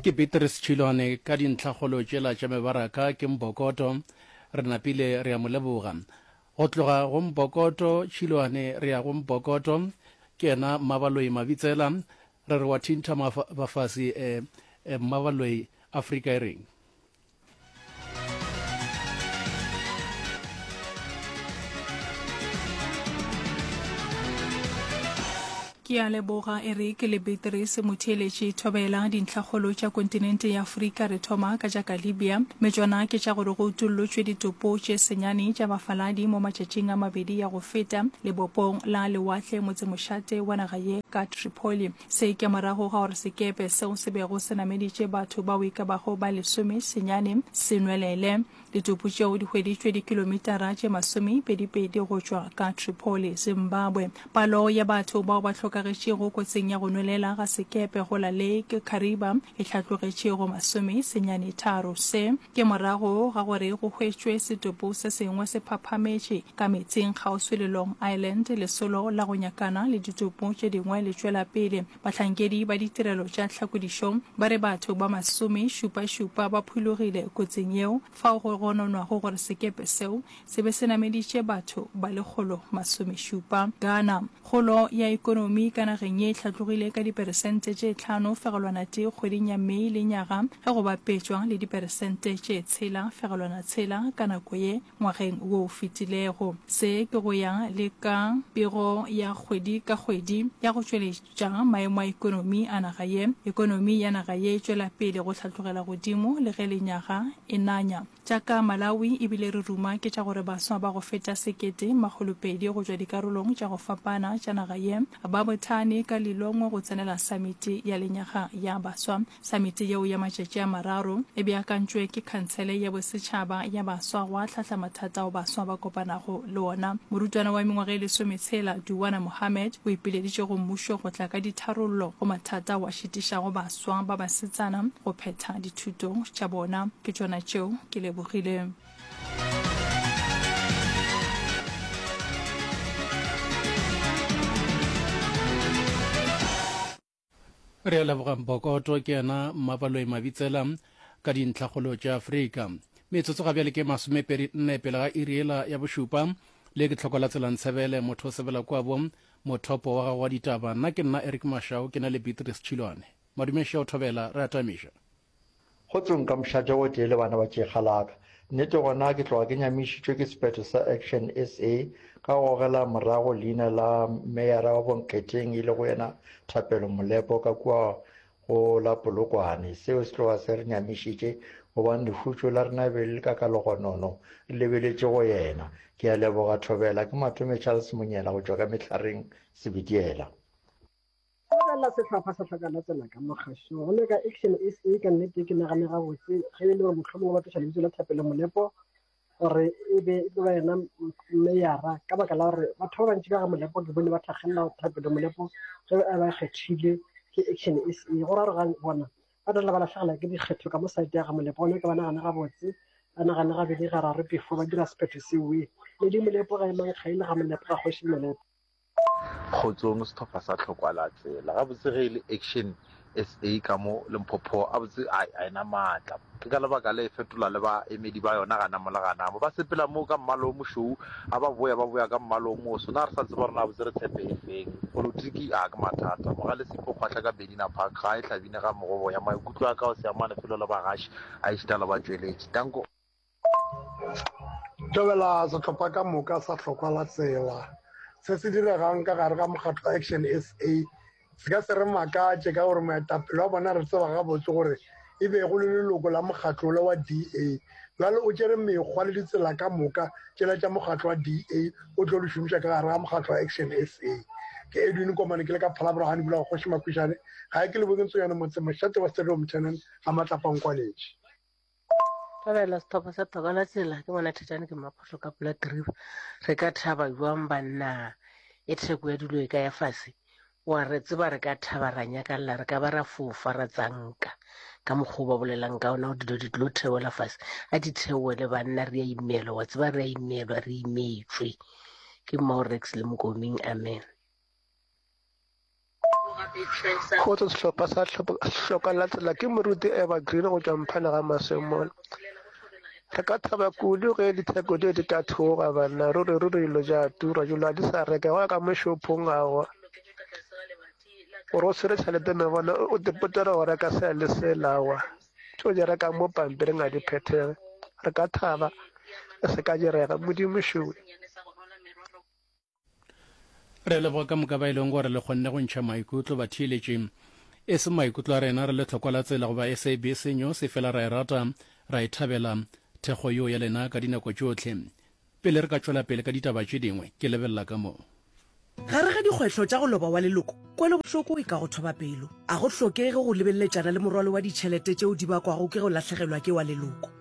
Ke Beatrice Tšhilwane, ka dintlhakgolo tšela tša mebaraka ke Mbokoto. Re napile re a mo leboga. Go tloga go Mbokoto Tšhilwane re ya go Mbokoto, ke yena Mmabaloi Mabitsela. Re re wa thintha mafasi, Mmabaloi, Afrika e reng? ke a leboga e re ke lebeterese motheeletše thobela dintlhakgolo tša kontinente ya aforika re thoma ka tša ka libya mme tšona ke tša gore go utollotšwe ditopo tše senyane tša bafaladi mo matšatšing a mabedi ya go feta lebopong la lewatle motsemošate wa naga ye ka tripoli Se ke morago ga gore sekepe seo se bego se nameditše batho bao e ka bago ba lesome senyane se nwelele. Ditopo tšeo di hweditšwe dikilomitara tše masomepedipedi go tšwa ka Tripoli, Zimbabwe. Palo ya batho bao ba hlokagetšego kotsing ya go nwelela ga sekepe go la Lake Kariba e hlatlogetše go masome senyane tharo. Se Ke morago ga gore go hwetšwe setopo se sengwe se phaphametše ka meetseng kgauswi le Long Island, lesolo la go nyakana le ditopo tše dingwe le tšwela pele. Bahlankedi ba ditirelo tša tlhakodišo ba re batho ba masome šupa šupa ba phulogile kotsing yeo fao go gononwago gore sekepe seo se be se nameditše batho ba lekgolo masomešupa. Ghana, Kgolo ya ekonomi ka nageng ye e hlatlogile ka diperesente tše tlhano fegelwana tee kgweding ya May lenyaga ge go bapetšwa le diperesente tše tshela fegelwana tshela ka nako ye ngwageng wo o fetilego. Se ke go ya le ka pego ya kgwedi ka kgwedi ya go tšweletša maemo a ekonomi a naga ye. Ekonomi ya naga ye e tšwela pele go hlatlogela godimo le ge lenyaga e nanya. Tša ka Malawi e bile re ruma ke tša gore baswa ba go feta sekete makgolo pedi go tšwa dikarolong tša go fapana tša naga ye ba bothane ka Lilongwe go tsenela Samiti ya Lenyaga ya Baswa. Samiti yeo ya matšatši a mararo e beakantšwe ke Khansele ya Bosetšhaba ya Baswa go ahlahla mathata ao baswa ba kopanago le ona. Morutwana wa mengwaga e lesometshela, Duwana Mohammed o ipileditše go mmušo go tla ka ditharollo go mathata ao a šitišago baswa. swa ba basetsana go phetha dithuto tša bona ke tšona tšeo ke lebogile re a lebogang bokoto ke yena mmapaloi mabitsela ka dintlhakgolo tša afrika metsotso ga bjale ke masomepedi nne pele ga iriela ya bošupa le ke tlhoko la tselantsebele motho o sebela kwabo Mothopo wa gago wa ditaba nna ke nna Eric Mashau ke na le Beatrice Tšhilwane. Madume Ša o Thobela, re atamiša. Go tsong ka mošate o tee le bana ba tšekga la ka. Nnete gona ke tloga ke nyamišitšwe ke sephetho sa Action SA ka go gogela morago leina la meyara wa Bonkgeteng e lego yena Thapelo Molepo ka kua Go la Polokwane, seo se tloga se re nyamišitše, gobane lehutšo la rena be le le ka ka logonono, re lebeletše go yena. Ke a leboga, Thobela. Ke Matome Charles Monyela go tšwa ka Mehlareng, Sebitiela. Go lebelela sehlopha sa Hlokalatsela ka Mogašo go le ka Action SA, ka nnete ke nagane gabotse ge e le gore mohlomongwe ba tloša lebitso la Thapelo Molepo gore e be e tlo ba yena meyara ka baka la gore batho ba bantši ka ga molepo ke bone ba tlhagelela thapelo molepo ge a ba kgethile ke action e se go ra gore bona ba tla ba latlhegela ke dikgetho ka mo site ya ga molepo gone ke ba nagane gabotse ba nagane gabedi gararo before ba dira sephetho seoe le di molepo ga e mang ga e le ga molepo ga kgoši molepo Kgotsong sehlopha sa tlhokwa la tsela gabotse ge e le action sa ka mo lemphopho a botse a a ena maatla ke ka lebaka le fetola le ba emedi ba yona gana mo le gana mo ba sepela mo ka mmalo o mošou a ba boya ba boya ka mmalo o moso na re sa tseba rona a botse re tshepe e feng politiki a ke mathata mo ga le sepo kgwahla ka bedina park ga e hlabine ga mogobo ya maikutlo a ka o se amane felo le bagashi a e šita le ba tšweletši tanko Tobela sehlopha ka moka sa hlokwa la tsela se se diregang ka gare ga mokgatlo action sa se ka se re makatše ka gore moetapele wa bona re tseba gabotse gore e be go le leloko la mokgatlo le wa da jale o tšere mekgwa le ditsela ka moka tšela tša mokgatlo wa da o tlo di šomiša ka gare ga mokgatlo wa action sa ke edwin komane ke le ka phalabora ga dibula gogoši makwišane ga e ke le bokentso yone motse mošate wa stadium tenant ga matlapa nkwaletše Rabela sethopa sa toka la tsela ke bona thetane ke maphohlo ka pula keriba re ka thaba jwang banna e theko ya dilo e ka ya fase wa re tseba re ka thaba ra nyakalla re ka ba ra fofa ra tsanka ka mokgwa o ba bolelang ka ona gore dilo di tlo theola fase a di theole banna re a imelwa wa tseba re a imelwa re imetswe ke mmorex le mokoming amen Go tswa sehlopha sa hloka latela ke moruti Eva Green go tšwa mphana ga Masemolo. Re ka thaba kudu ge ditheko di di ka thoga banna ruri ruri dilo ja tura jolo a di sa reka go ka mešophong ago gore o swere tšhelete me bona o dipotera go reka se le se lawa tšo di reka mo pampiring a di phethege re ka thaba e se ka direga modimo šoe Re leboga ka moka ba e leng gore le kgonne go ntšha maikutlo batheeletši. E se maikutlo a rena re le tlhokwa la tsela goba SABC News e fela ra e rata, ra e thabela thekgo yo ya lena ka dinako tšohle. Pele re ka tšwela pele ka ditaba tše dingwe, ke lebelela ka mo. Gare ga dikgwetlho tša go loba wa leloko, kwelobohloko e ka go thoba pelo. A go hlokege go lebeleletšana le morwalo wa ditšhelete tšeo di bakwago ke go lahlegelwa ke wa leloko.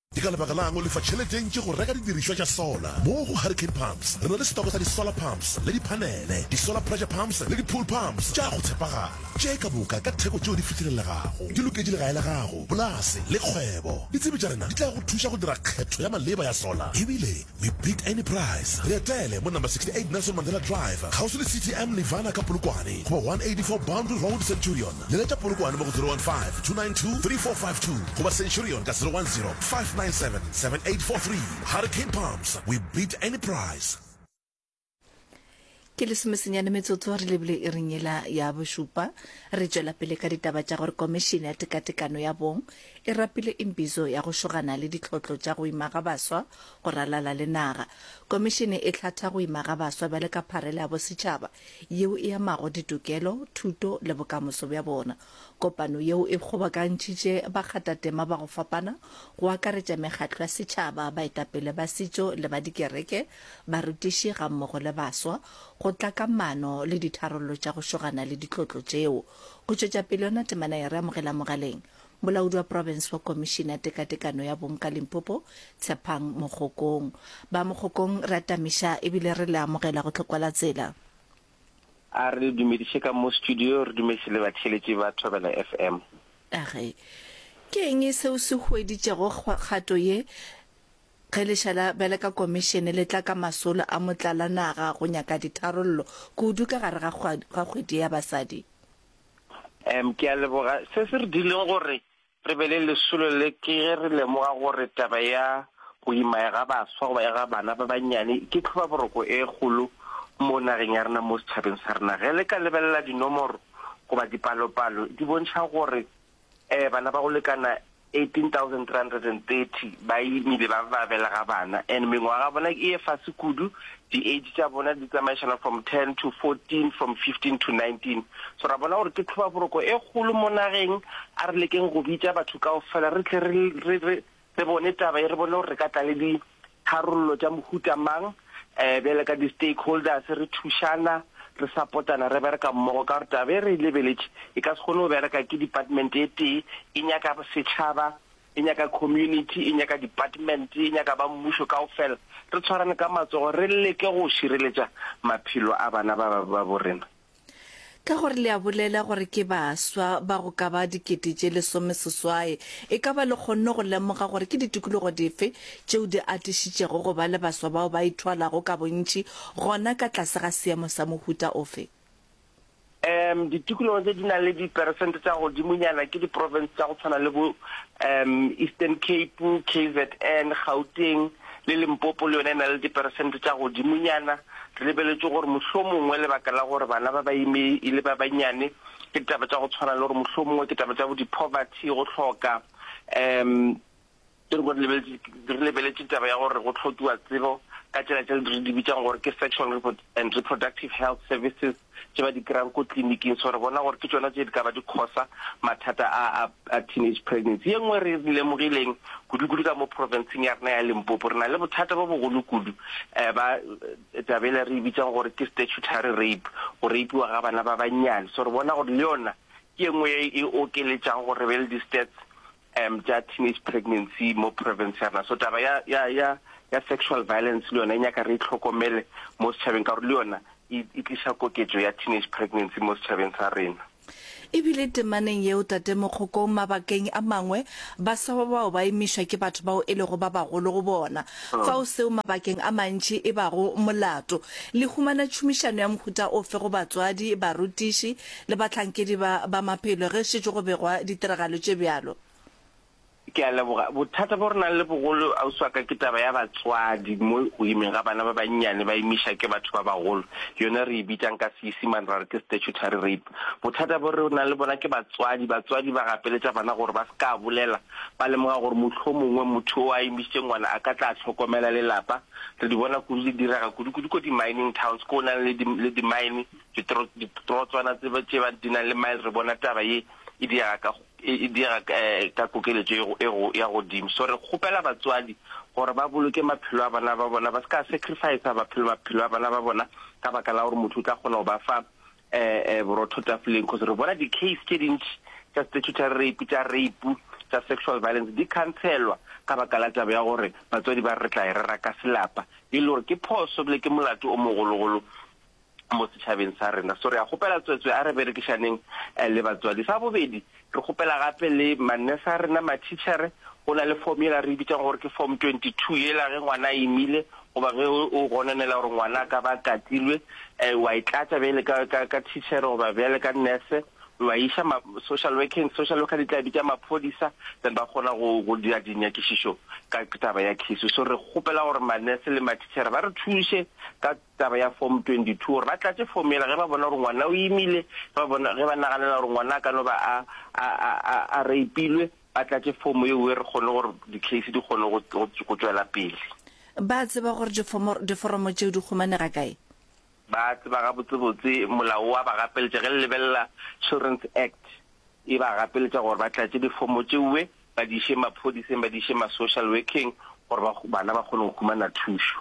Ke ka lebaka la'ng o lefa tšhelete e ntši go reka didirišwa tša sola? Mo go Hurricane Pumps re na le setoko sa di-solar pumps le diphanele, di-solar pressure pumps le di-pool pumps tša go tshepagala, tše ka moka ka theko tšeo di fihlelelegago. Di loketše legae la gago, polase le kgwebo. Ditsebi tša rena di tla go thuša go dira kgetho ya maleba ya sola ebile We beat any price. Re etele mo number 68 Nelson Mandela Drive, kgauswi le CTM Nirvana ka Polokwane, goba 184 Boundary Road, Centurion. Leletša Polokwane mo go 015-292-3452 goba Centurion ka 010-597-7843. Hurricane Pumps, we beat any price. ke lesomesenyane metsotso re lebile e renyela ya bošupa re tšwela pele ka ditaba tša gore komišene ya tekatekano ya bong e rapile imbizo ya go šogana le ditlhotlo tša go ima ga baswa go ralala le naga komišene e tlhatha go ima ga baswa bjale ka pharela ya bosetšhaba yeo e amago ditokelo thuto le bokamoso bja bona Kopano yeo e kgobokantšitše bakgatatema ba go fapana, go akaretša mekgatlo ya setšhaba, baetapele ba setšo le ba dikereke, barutiši gammogo le baswa, go tla ka maano le ditharollo tša go šogana le ditlotlo tšeo. Go tšwetša pele yona temana ya Re Amogela Mogaleng, Molaodi wa Profense wa Komišene ya Tekatekano ya Bong ka Limpopo, Tshephang Mogokong. Ba Mogokong re atamiša ebile re le amogela go tlhokwalatsela. A re le dumediše ka mo studio, re dumediše le batheeletši ba Thobela FM. Age, Ke eng seo se hueditšego kgato ye ge lešala bjale ka komišene le tla ka masolo a motlalanaga go nyaka ditharollo kudu ka gare ga kgwedi ya basadi? Em, Ke a leboga. Se se re dileng gore Re be le lesolo le ke ge re lemoga gore taba ya go ima ga baswa goba ya ga bana ba bannyane ke tlhobaboroko e kgolo mo nageng ya rena, mo setšhabeng sa rena. Ge le ka lebelela dinomoro goba dipalopalo di bontšha gore um bana ba go lekana 18,330 ba imile ba ba belega bana and mengwaga ya bona e fase kudu di age tša bona di tsamaišana from ten to fourteen from fifteen to nineteen so ra bona gore ke tlhobaboroko e kgolo mo nageng a re lekeng go bitša batho kao fela re tle re re re re bone taba e re bone gore re ka tla le di tharollo tša mohuta mang um bjale ka di-stakeholders re thušana re sapotana re bereka mmogo ka gore taba e re e lebeletše e ka se kgone go bereka ke department e tee e nyaka setšhaba e nyaka community, e nyaka department, e nyaka ba mmušo kaofela re tshwarane ka matsogo re leke go šireletša maphelo a bana ba ba bo rena. Ka gore le a bolela gore ke baswa ba go ka ba dikete tše lesomeseswai, e ka ba le kgonne go lemoga gore ke ditikologo dife tšeo di atišitšego go ba le baswa bao ba ithwalago ka bontši gona ka tlase ga seemo sa mohuta ofe? Um, ditikologo tse di nang le diperesente tsa godimonyana ke diporofense tsa go tshwana le bo um Eastern Cape, KZN, Gauteng le Limpopo le yone e na le diperesente tsa godimonyana. Re lebeletse gore mohlho mongwe lebaka la gore bana ba ba ime e le ba bannyane ke ditaba tsa go tshwana le gore mohlho mongwe ke taba tsa bo di-poverty, go tlhoka um Ke re re re lebeletše taba ya gore go hlokiwa tsebo ka tsela tse re di bitsang gore ke sexual and reproductive health services tše ba di kry-ang ko tleliniking so re bona gore ke tsona tse di ka ba di kgosa mathata a a teenage pregnancy ye nngwe re lemogileng kudu-kudu ka mo provinceng ya rena ya limpopo re na le bothata bo bogolo kudu um ba tabele re e bitsang gore ke statutory rape go rapiwa ga bana ba bannyane so re bona gore le yona ke ye nngwe e okeletsang gore re be le di-stats um tša teenage pregnancy mo province ya rena so taba ya ya ya ya sexual violence le yona e nyaka re itlhokomele mo setšhabeng ka gore le yona e, e tliša koketšo ya teenage pregnancy mo setšhabeng sa rena ebile temaneng yeo tate mokgokong mabakeng a mangwe baswa ba bao ba emišwa ke batho bao e lego ba bagolo go bona hmm. fao seo mabakeng a mantši e bago molato le humana tšhomišano ya mohuta ofe go batswadi barutiši Le bahlankedi ba, ba maphelo ge šetše go begwa ditiragalo tše bjalo. Ke a leboga. Bothata bjo re nang le bogolo, ausi wa ka, ke taba ya batswadi mo go imeng ga bana ba bannyane ba imiša ke batho ba bagolo. Yona re e bitsang ka Seisimane ra re ke statutory rape. Bothata bjo re nang le bona ke batswadi. Batswadi ba gapeletša bana gore ba se ka bolela, ba lemoga gore mohlomongwe motho yo a imišitšeng ngwana a ka tla hlokomela lelapa. Re di bona kudu di direga kudu-kudu ko di-mining towns, ko go nang le di, le di-mine. Ditrotswana tse ba di nang le mile re bona taba ye e diega ka kokeletšo ya godimo. So re kgopela batswadi gore ba boloke maphelo a bana ba bona, ba se ka sacrificer maphelo a bana ba bona ka baka la gore motho o tla kgona go ba fa borotho tafoleng. Because re bona di-case tše dintši tša statutory rape, tša rape, tša sexual violence di khantshelwa ka baka la taba ya gore batswadi ba re re tla e rera ka selapa, e le gore ke phoso ebile ke molato o mogologolo. mo setšhabeng sa rena. So re a kgopela tswetswe a re berekišaneng le batswadi. Sa bobedi, re kgopela gape le mannese a rena, mathitšhere, go na le form yela re e bitsang gore ke form 22 yela ge ngwana a imile goba ge o gononela gore ngwana a ka ba katilwe, um wa e tlatša bjale ka, ka, ka thitšhere goba bjale ka nese, wa iša ma, social workeng, social worker di tla bitša maphodisa, then ba kgona go, go dira dinyakišišo ka taba ya case. So re kgopela gore mannese le mathitšhere ba re thuše ka Taba ya Form 22, gore ba tlatše form yela ge ba bona gore ngwana o imile, ge ba bona, ge ba naganela gore ngwana a ka no ba a, a, a, a, a reipilwe, ba tlatše form ye uwe re kgone gore di-case di kgone go, go, go tšwela pele. Ba tseba gore difomo, diforomo tšeo di humanega kae? Ba tseba gabotsebotse, molao wa ba gapeletša, ge le lebelela Children's Act, e ba gapeletša gore ba tlatše difomo tšeuwe ba di iše maphodiseng ba di iše ma social workeng gore ba bana ba kgone go humana thušo.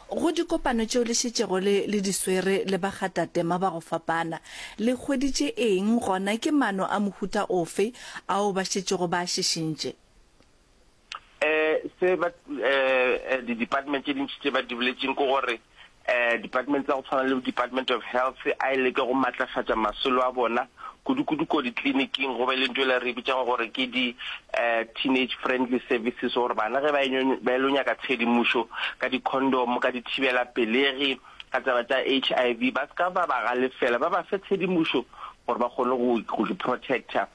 Go dikopano tšeo le šetšego le le di swere le bagatatema ba go fapana, le hweditše eng gona ke mano a mohuta ofe ao ba šetšego ba a šišintše? um se ba um di-department tše dintši tše ba di boletseng ke gore um department tsa go tshwana le department of health a e leke go maatlafatša masolo a bona kudu-kudu ko ditleliniking go be le nto e le re bitsang gore ke di-teenage um friendly services gore bana ge ba e lo nyaka tshedimošo ka di-condom ka dithibela pelegi ka taba tsa h i v ba se ka ba ba galefela ba ba fe tshedimošo gore ba kgone go protector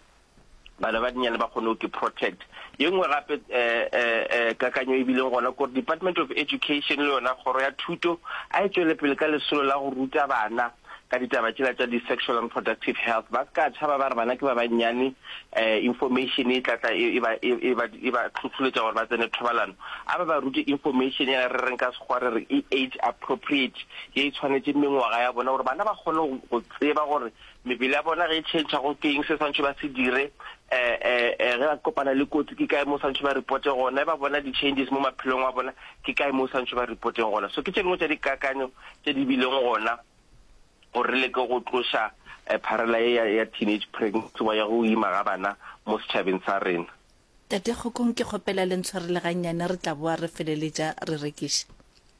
bana ba dinnyane ba kgone go ke protect ye nngwe gape um kakanyo e bileng gona kore department of education le yona kgoro ya thuto a e tswele pele ka lesolo la go ruta bana ka ditaba tšela tša di-sexual and productive health ba ka tšhaba ba re bana ke ba bannyane um information e tlatla e, e, e ba tlhotlholetša gore ba tsene thobalano a ba ba rute information ya re reng ka sekgwa re re e age appropriate ye e tshwanetseng mengwaga ya bona gore bana ba kgone go tseba gore Mebele ya bona ge e tšhentšha go ke eng se swantšhe ba se dire, ge ba kopana le kotsi ke kae mo swantšhe ba repote gona, ge ba bona di-changes mo maphelong a bona ke kae mo swantšhe ba repoteng gona. So ke tše dingwe tša dikakanyo tše di bileng gona gore re leke go tloša pharela ye ya ya teenage pregnancy wa ya go ima ga bana mo setšhabeng sa rena. Tate Kgokong ke kgopela le ntshwarele gannyane re tla boa re feleletša re rekiša.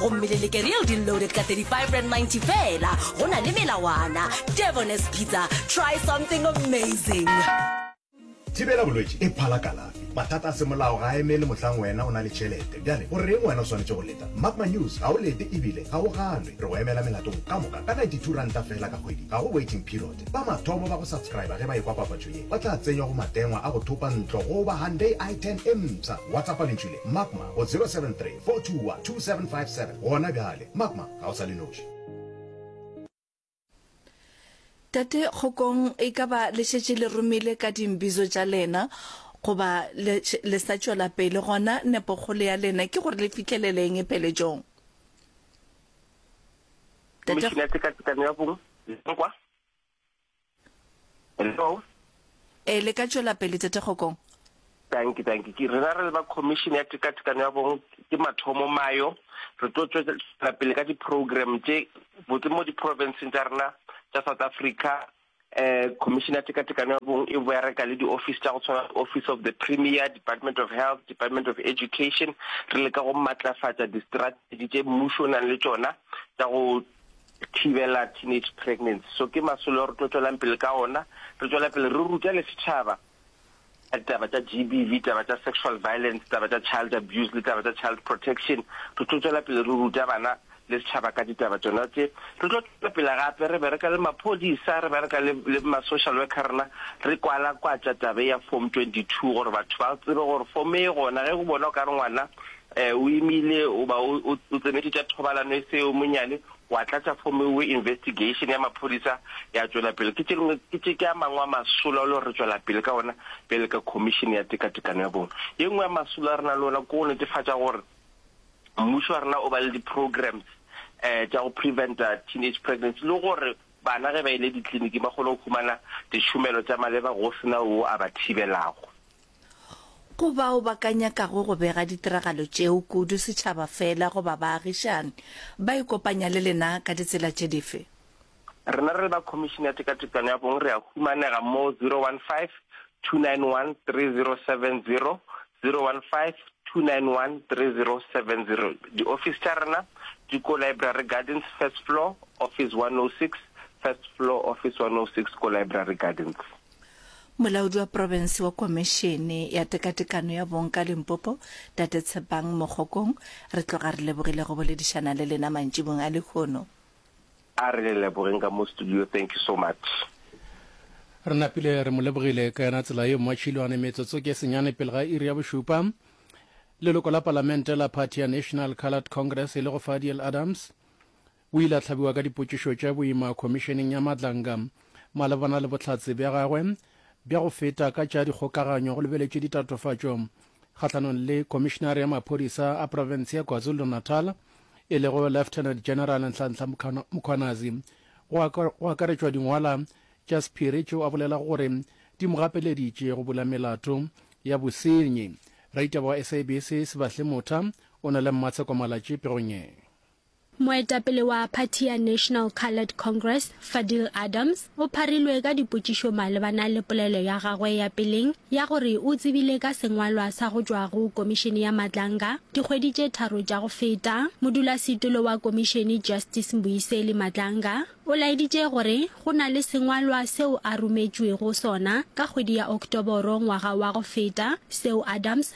gomme le leke real deal loaded ka 35 rand 90 fela go na le melawana devones pizza try something amazing thibela bolwetši e phala kalafi mathata a semolao ga a emele mohlang wena o na le tšhelete bjale o reng wena o swanetše go leta mark my news ga o lete ebile ga o ganwe re go emela melatong ka moka ka 92 ranta fela ka kgwedi ga go waiting period ba mathomo ba go subscriba ge ba ekwa papatšo ye ba tla tsenywa go matengwa a go thopa ntlo goba handay i 10 e mpsha whatsapp lentšwi le mark my go 073 421 2757 gona bjale. Mapma ga o sa le noši. Tate Kgokong, e ka ba le šetše le romile ka dimbizo tša lena goba le, le sa tšwela pele, gona nepokgolo ya lena ke gore le fihlelele eng peeletšong? Tate. Khomišene ya Tshekatshekano ya Bong le Nkwa. Hello. E le ka tšwela pele tete Kgokong. Thank you, thank you. Ke rena re le ba commission ya tekatekano ya bong ke mathomo mayo. Re tlo tswela pele ka di program tše botse mo di province tsa rena tsa South Africa. Eh commission ya tekatekano ya bong e bereka le di office tsa go tshwana office of the premier, department of health, department of education. Re leka go matlafatsa di strategy tše mmušo o nang le tšona tsa go thibela teenage pregnancy. So ke masolo ao re tlo tšwelang pele ka ona, re tšwela pele re ruta le setšhaba ka ditaba tša GBV, taba tša sexual violence, taba tša child abuse le taba tša child protection. Re tlo tšwela pele re ruta bana le setšhaba ka ditaba tsona tse. Re tlo tšwela pele gape re bereka le maphodisa, re bereka le, le ma-social worker rena, re kwala kwatša taba ya form 22 gore batho ba tsebe gore form e gona ge go bona o ka re ngwana E, o imile goba o, o, o tsenetše tša thobalano e seo monyane, wa tlatša fomo eo investigation ya maphodisa ya tšwela pele. Ke tše, ke tše ke a mangwe a masolo a lo re tšwela pele ka ona bjale ka Khomišene ya Tekatekano ya Bong. Ye nngwe ya masolo a re na le ona ke go netefatša gore mmušo wa rena o ba le di-programs e, tša go preventa teenage pregnancy le gore bana ge ba ile ditliliniking ba kgone go humana ditšhomelo tša maleba go sena wo a ba thibelago. Go bao ba ka nyakago go bega ditiragalo tšeo kudu setšhaba fela goba baagišani, ba ikopanya le lena ka ditsela tše dife? Rena re le ba Khomišene ya Tekatekano ya Bong re a humanega mo 015-291-3070, 015-291-3070. Diofisi tša rena di ko Library Gardens, first floor, office 106, first floor, office 106, ko Library Gardens. Molaodi wa Profense wa Komešene ya Tekatekano ya Bong ka Limpopo, Tate Tshepang Mokgokong, re tloga re lebogile go boledišana le lena mantšibong a lehono. A re le lebogeng ka mo studio, thank you so much. Re napile re mo lebogile ka yona tsela eo Matšhilwane metsotso ke senyane pele ga iri ya bošupa. Leloko la palamente la phathi ya National Coloured Congress e le go Fadiel Adams O ile a hlabiwa ka dipotšišo tša boima Khomišeneng ya Madlanga malebana le bohlatse bja gagwe bja go feta ka tša dikgokaganyo go lebeletšwe ditatofatšo kgahlanong le Khomišenare ya Maphodisa a Profense ya KwaZulu-Natal e lego Lieutenant General Nhlanhla Mkhwanazi go akaretšwa dingwala tša sephiri tšeo a bolelago gore di mo gapeleditše go bula melato ya bosenyi. Raditaba wa SABC Sebahle Motha o na le Mmatsheko Malatši pegong ye. Moetapele wa phathi ya National Coloured Congress, Fadil Adams, o pharilwe ka dipotšišo malebana le polelo ya gagwe ya peleng ya gore o tsebile ka sengwalwa sa go tšwa go Komišene ya Matlanga dikgwedi tše tharo tša go feta. Modulasetilo wa Komišene, Justice Mbuyiseli Matlanga, o laeditše gore go na le sengwalwa seo a rometšwego sona ka kgwedi ya Oktoboro ngwaga wa go feta seo Adams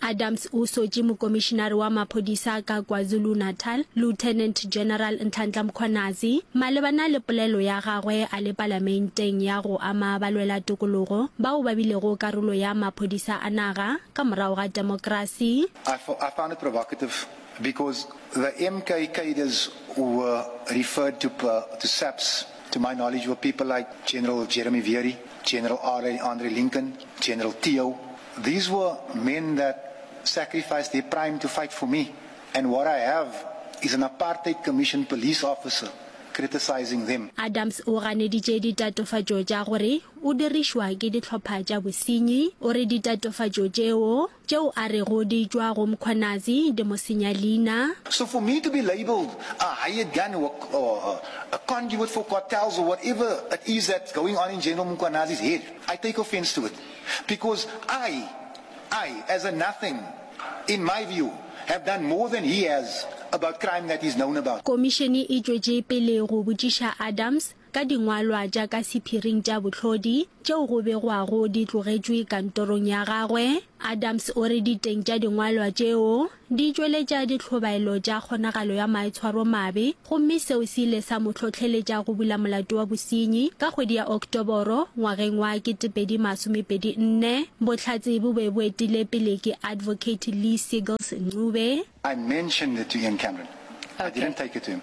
Adams o sotše mokomišinare wa maphodisa ka KwaZulu-Natal, Lieutenant General Nhlanhla Mkhwanazi, malebana le polelo ya gagwe a le palamenteng ya go ama balwela tokologo bao ba bilego karolo ya maphodisa a naga ka morago ga demokrasi. I found it provocative because the MK cadres who were referred to to SAPS to my knowledge were people like General Jeremy Veery, General RA. Andre Lincoln, General Theo, These were men that sacrificed their prime to fight for me and what I have is an apartheid commission police officer criticising them. Adams o ganeditše ditatofatšo tša gore o dirišwa ke dihlopha tša bosenyi. O re ditatofatšo tšeo, tšeo a rego di tšwa go Mkhwanazi, di mo senya leina. So for me to be labelled a hired gun or a conduit for cartels or whatever it is that's going on in General Mkhwanazi's head, I take offence to it. because I, I as a nothing, in my view, have done more than he has about crime that he's known about. Komišene e tšwetše pele go botšiša Adams ka dingwalwa tša ka sephiring tša bohlodi tšeo go begwago di tlogetšwe kantorong ya gagwe. Adams o re diteng tša dingwalwa tšeo Di tšweletša ditlhobaelo tša kgonagalo ya maitshwaromabe gomme seo se ile sa mo hlohleletša go bula molato wa bosenyi. Ka kgwedi ya Oktoboro ngwageng wa 2024, bohlatse bo be bo etile pele ke Advocate Lee Seagulls Ncube, I mentioned it to Ian Cameron. I didn't take it to him.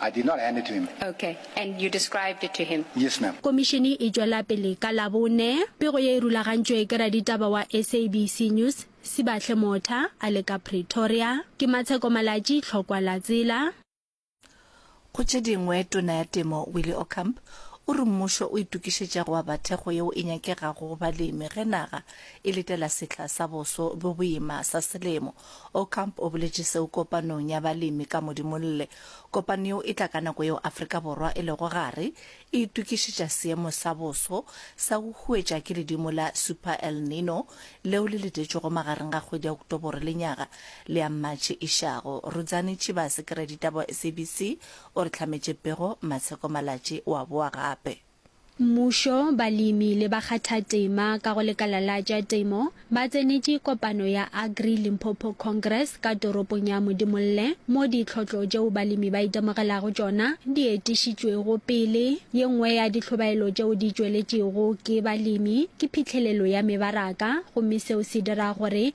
I did not hand it to him. Okay. And you described it to him? Yes, ma'am. Komišene e tšwela pele ka Labone. Pego ye e rulagantšwe ke raditaba wa SABC News, Sibahle Motha, a le ka Pretoria. Ke Matsheko Malatji, Tlhokwa la Tsela. Go tše dingwe, Tona ya Temo Willie Ocamp o re mmušo o itokišetša go aba thekgo yeo e nyakegago go balemi ge naga e letela sehla sa boso bjo boima sa selemo Ocamp o boletše seo kopanong ya balemi ka Modimolle. Kopano yeo e tla ka nako yeo Afrika Borwa e lego gare e itokišetša seemo sa boso sa go huetša ke ledimo la Super El Nino leo le letetšwego magareng ga kgwedi ya Oktobore le nyaga le ya Matšhe e šago. Rudzani Chibase, ke raditaba wa SABC, o re hlametše pego Matsheko Malatji o a boa gape. Mmušo, balemi le bakgathatema ka go lekala la tša temo ba tsenetše kopano ya Agri Limpopo Congress ka toropong ya Modimolle mo ditlhotlo tšeo balemi ba itemogelago tšona di etišitšwego pele. Ye nngwe ya dihlobaelo tšeo di tšweletšego ke balemi ke phihlelelo ya mebaraka gomme seo se dira gore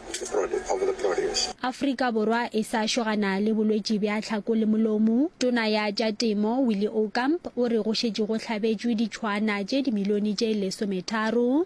Afrika Borwa e sa šogana le bolwetši bja tlhako le molomo, Tona ya tša Temo Willie Okamp o re go šetše go hlabetšwe ditšhoana tše dimilione tše lesometharo.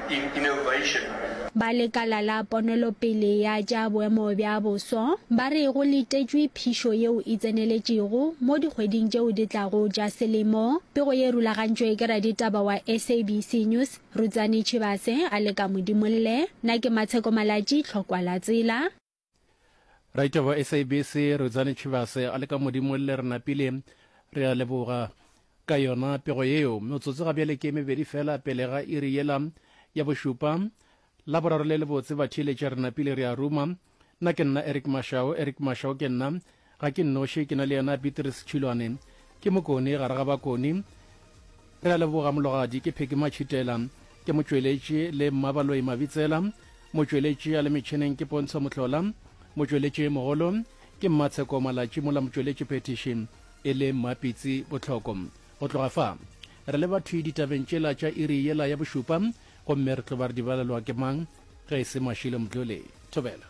Ba lekala la ponelopele ya tša boemo bja boso ba re go letetšwe phišo yeo e tseneletšego mo dikgweding tšeo di tlago tša selemo. Pego ye e rulagantšwe ke raditaba wa SABC News Rutsani Tshibase a le ka Modimolle. Na ke Matsheko Malatji, Tlhokwa la Tsela. Raita ba SABC Rudzani Tshivhase a le ka modimo le re napile re a leboga ka yona pego yeo. Motsotso ga bjale ke mebedi fela pele ga iri yela ya bošupa la boraro le lebotse ba theeletša re napile re a ruma. Nna ke nna Eric Mashao, Eric Mashao ke nna, Ga ke nnoši, ke na le yena Beatrice Tšhilwane. Ke mokone gare ga bakone. Re a leboga, Mologadi. Ke Pheky Matšhitela. Ke motšweletši le Mmabaloi Mabitsela. Motšweletši a le metšhineng ke Pontsho Mohlola. Motšweletšimogolo ke Mmatsheko Malatši mola motšweletši phethiši e le Mmapitsi Botlhoko. Go tloga fa, re le bathwi ditabeng tšela tša iri yela ya bošupa gomme re tlo ba re di balelwa ke mang ge e se Mashilo Mdluli. Thobela.